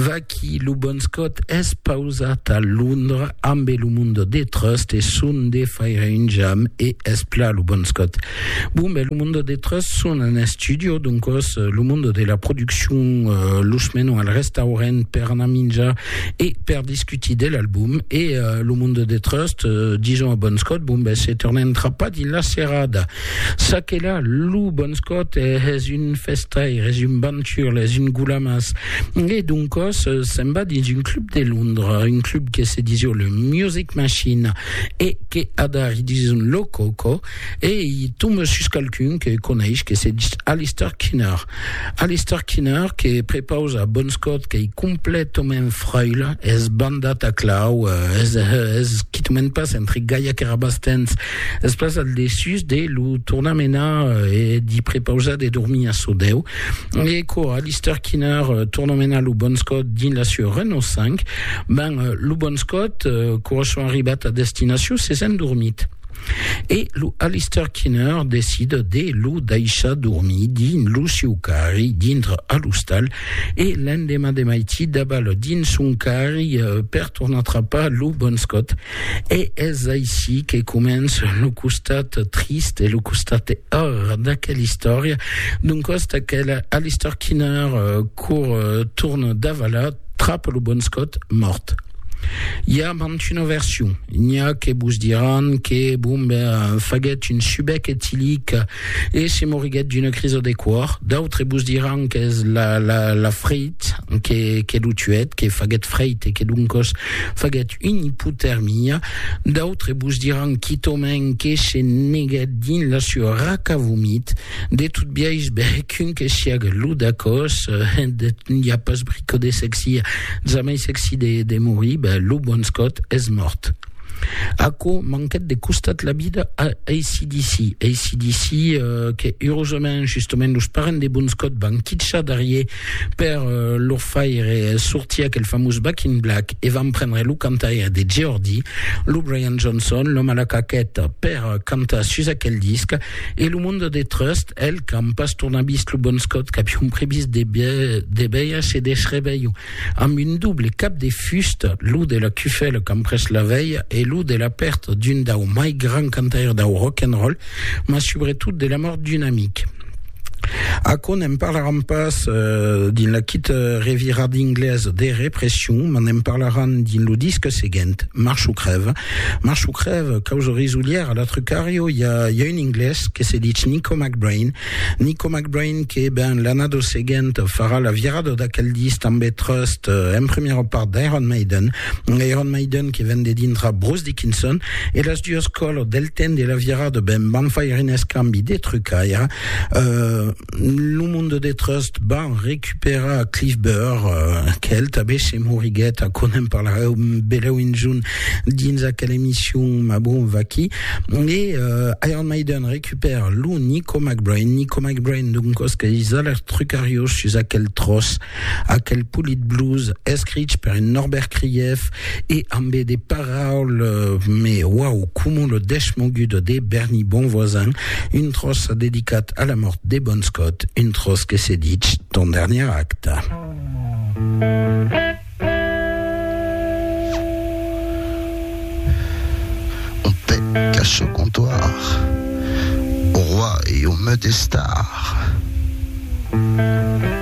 Vaqui lo bon Scott es pausat a Londra ambe lo Mundo de Trust e son de faire un jam e es pla lo bon Scott. Bon ben lo Mundo de Trust son en estudio doncos lo Mundo de la produccion los menon al restaurent per anar minjar e per discutir de l'album e lo Mundo de Trust dison a bon Scott bon ben se tornem trapar dins la serada. Ça que là, lo bon scot es un festaire, es un banturle, es un goulamas. Et doncos, se'n va dins un club de Londres, un club que se disio le Music Machine, et que adar i dison lo coco, et i tombe sus qualqu'un que coneish que se dis Alistair Kinner. Alistair Kinner que prepausa bon scot que i completament fraile, es bandat a clau, es quitament pas entre gaiac e rabastens, Es pas al desús de lo tornar menar e d'i prepausar de dormir a so deu. E quora Lister Kinner torna menar lo Bon Scott dins la sua Renault 5, ben, lo Bon Scott, quora son arribat a destinacion, s'es endormit. E lo Alister Kinner decida de lo daishar dormir dins lo siu carri dintre a l'ostal e l'endemà de maití davalar dins son carri per tornar trapar lo Bon Scott. E es aicí que comença lo costat trist e lo costat heur d'aquela istòria, d'un còs d'aquela Alistair Kinner cor torn davalat trap lo bon scot mòrt. I a mant una version, n'i a que vos diràn que Bomber faguèt un subec etilic e se moriguèt d'una crisa de còr, d'autres vos diràn qu'es la la la freit que que lo tuèt, que faguèt freit e que doncòs faguèt un ipotermia, d'autres vos diràn quitòment que se negèt dins la sua raca vomit, de tot biais bèc un que siaga lo dacòs, n'i a pas brico de sexi, jamai sexi de de morir, ben lo bon Scott es mòrt. Aquò manquèt de costat la vida a ACDC, ACDC que eurosament justament los parents de bon Scott van quitjar darrier Per lor faire sortir aquel famós Back in Black e van prendre lo cantaire de Geordie, lo Brian Johnson, l'òme a la caqueta, per cantar sus aquel disc e lo monde de Trust, el, qu'an pas tornat vist lo Bon Scott qu'avion previst de de veire se desrevelha amb un doble cap de fusta, lo de la cufèla qu'an pres la velha e lo de la pèrta d'un dau mai grand cantaire dau rock and roll, mas subretot de la mòrt d'un amic. Aquò ne'n parlaran pas dins la quita revirada d'Inglés de Repression, mas ne'n parlaran dins lo disc seguent, March o crèv. March o crèv, causa risolièra, la Trucario, i a, i a un Inglés que se ditz Nico McBrain. Nico McBrain que, ben, l'annada seguenta farà la virada d'aquel disc tanben Trust, en primièra part d'Iron Maiden, Iron Maiden que ven de dintra Bruce Dickinson e las duas colors del temps de la virada ben van faire un escambi de trucaire euh, lo monde de Trust van recuperar Cliff Burr euh, quel tabé se moriguet a con en parlareu beleu un junt dins aquel emission ma bon vaqui e euh, Iron Maiden recupère lo Nico McBrain Nico McBrain d'un cosque is alers trucarios sus aquel tros Aquel polit blues escrich per un Norbert Krief e ambe de paraules me uau coma lo deshmogut de Berny Bonvoisin, un tròç dedicat a la mòrt de Bon Scott, un tròç que se ditz Ton dernier acte. Au comptoir, au roi et au meut estar.